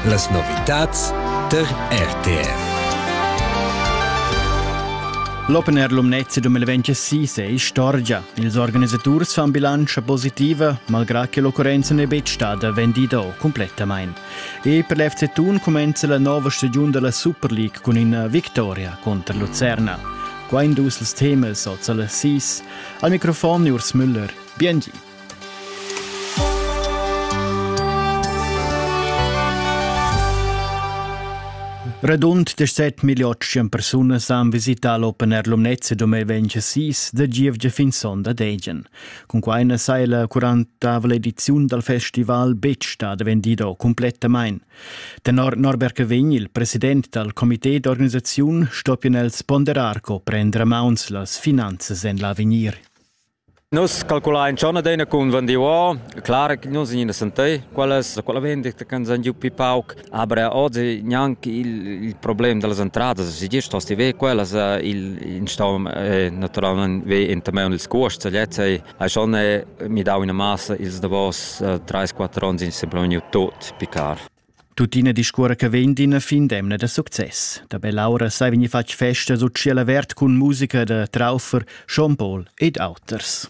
Las novitads tar RTR. L'Open Air Lumnezia 2026 è istorgia. Ils organisaturs fan bilantscha positiva, malgrà che l'occurrenza n'è betg stada vendida complettamain. E per l'FC Thun cumenza la nova stagiun della Super League cun ina victoria contro Lucerna. Qua in dus temas oz alle 6. Al microfon Urs Müller. Biengi. Radund 17.800 persunas han visità l'Open Air Lumnezia dom e 26 da gievgia fin sonda d'egen. Cun quai na sai la 40 ediziun dal festival betg stada vendida complettamain. Tenor Norbert Cavegn, il president dal comité d'organisaziun, stoppien els ponderar co prendere mauns las finanzas en l'avegnir. Nus calculain schon adina cun vendiuor. Clar che nus gnina sentir quella, quella vendita che ens han giu pi pauc. Aber oggi gnanche il, il problem dellas entradas, si gest hosti ve quellas, il, in stau naturalment ve in temaun ils cuosts lezs ei, hai schon mi dau ina massa ils davos 3-4 onns in semplon tut picar. Tuttina discuora che vegn d'ina fin d'emna da success. Da Bell'aura sai vegnir fatg festa sut tschiel avert cun musica da Traufer, Sean Paul ed auters.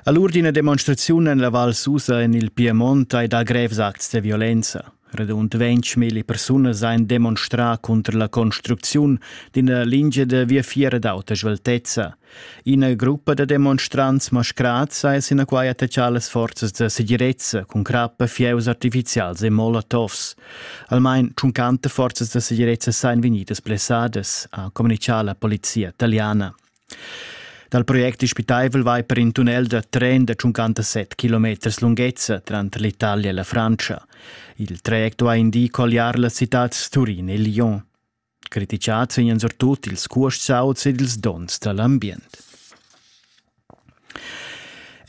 All'ur d'ina demonstraziun en la Val Susa en il Piemont hai dà grevs acts da violenza. Radund 20.000 persunas ein demonstrà contro la construcziun d'ina lingia da viafier d'auta sveltezza. Ina gruppa da demonstrants mascrats ha sinaquai attachà las forzas da segirezza cun crappa, fieus artifizials e molotovs. Almain tschuncanta forzas da segirezza sain vegnidas blessadas, ha communitgà la polizia italiana. Dal project dispitaivel vai per in tunnel da tren da 57 km lunghezza tranter l'Italia e la Francia. Il traject ha indì colliar las citads Turin e Lyon. Critichats vegnan surtut ils cuostauts ed ils donns dall ambient.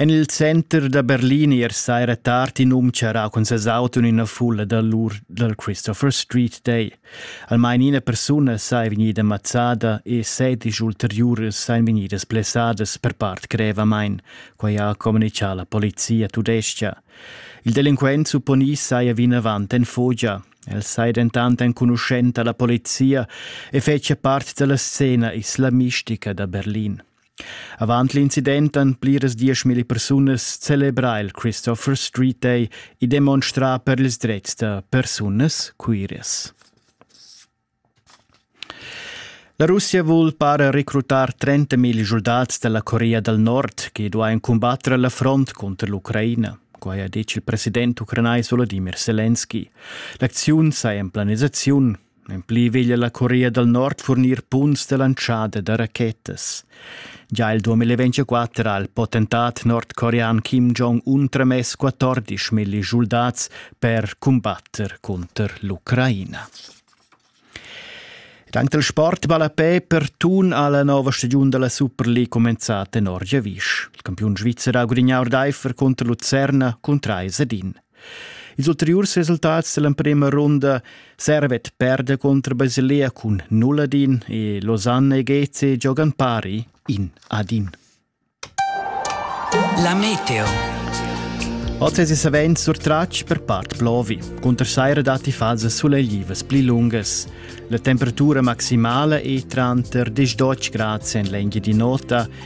En il center da Berlin ier saira tard in um charrà cun ses auto en ina fulla da lur dal Christopher Street Day. Almain ina persuna sa è vegnida mazzada e sedisch ulteriuras sain vegnidas blessadas per part grevamain, quai ha communicà la polizia tudestga. Il delinquent supponì saja vinavant en fogia. El sei dentant enconuschenta alla polizia e fetschia part dalla scena islamistica da Berlin. Avant l'incident han pliras dieschmilli persunas celebrà il Christopher Street Day e demonstrà per ils drets da persunas queeras. La Russia vul para recrutar 30 mil schuldats dalla Corea dal Nord che duain cumbatter la front cunter l'Ucraina. Quai ha detg il president ucranais Volodimir Selenski. L'acziun saja en planisaziun. En pli veglia la Corea dal Nord furnir punts da lantschada da rachetas. Gia il 2024 ha il potentat nordcorean Kim Jong-un tramess 14 milli schuldats per cumbatter cunter l'Ucraina. Dank del Sport vale pe per tun alla nova stagione della Super League commenzata in Orgevisch. Il campione svizzer ha gudignato d'Eifer contro Lucerna con 3 ed in Ils ulteriurs resultats dell'emprema runda servet perda contro Basilea cun nulla din e Lausanne e Geze giogan pari in ad in. La meteo. Oz es savent surtratg per part plovi, cunter saira datti fases suleglivas pli lungas. La temperatura maximala è tranter 10 grad sen l'engi di nota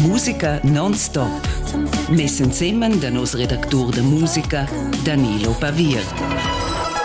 Musica non-stop. Mes ensemen da nos redactur da musica Danilo Pavir.